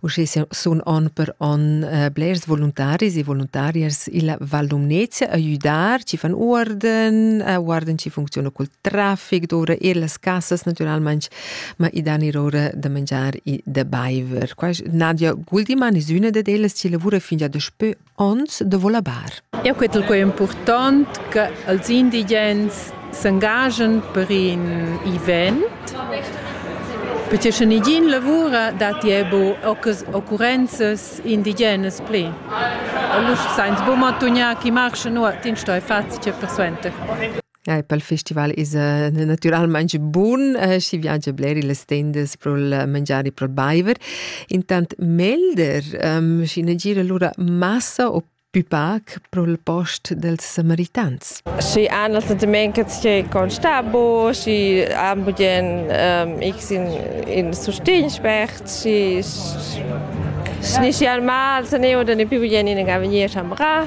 Uschè sun on per on eh, blers voluntaris e voluntarias illa Val Lumnezia a güdar, chi fan uorden, a uorden chi funcziuna cul trafic doura ir las casas natüralmaing, ma i dan ir ora da mangiar e da baiver. Qua Nadia Guldimann es üna dad ellas chi lavura fin già daspö Ons devo labar. Eu cretel quai important che els indigens s'engagen per in event perché sche nigin lavura datti ebo occurrenzas indigenas pli. Allura sainz buca mantugnar chi marcha nuot, in stoi fazzi che persuenter. Ja, pel festival esa natüralmaing bun, schi viagia bler illas tendas pro'l mangiari, pro'l baiver. Intant melder, schi na gira lura massa o pü pac pro'l post dels samaritans. Schi han els dumengias che constabo, schi han budien x in, in sustin spert, schi schi schi al mal, se ne oder ne pü budien in avvenir chambrà.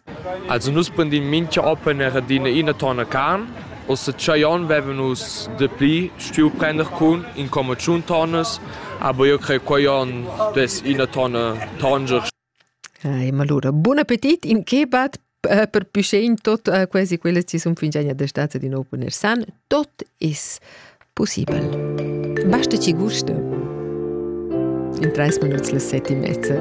Els han nus bandin mintga open er adina ina tonna carn. Ussa tschei onn vevan nus dapli stuiu prender cun in comma tschun tonnas, aber io crei quei onn dess ina tonna tanger. Ei, ma allura, buon appetit in kebab eh, per Püschein tot eh, quasi quelle ci sun fingiania da staza di nou poner san, tot is possibel. Basta ci gusto. In 30 minuts le sette e mezza.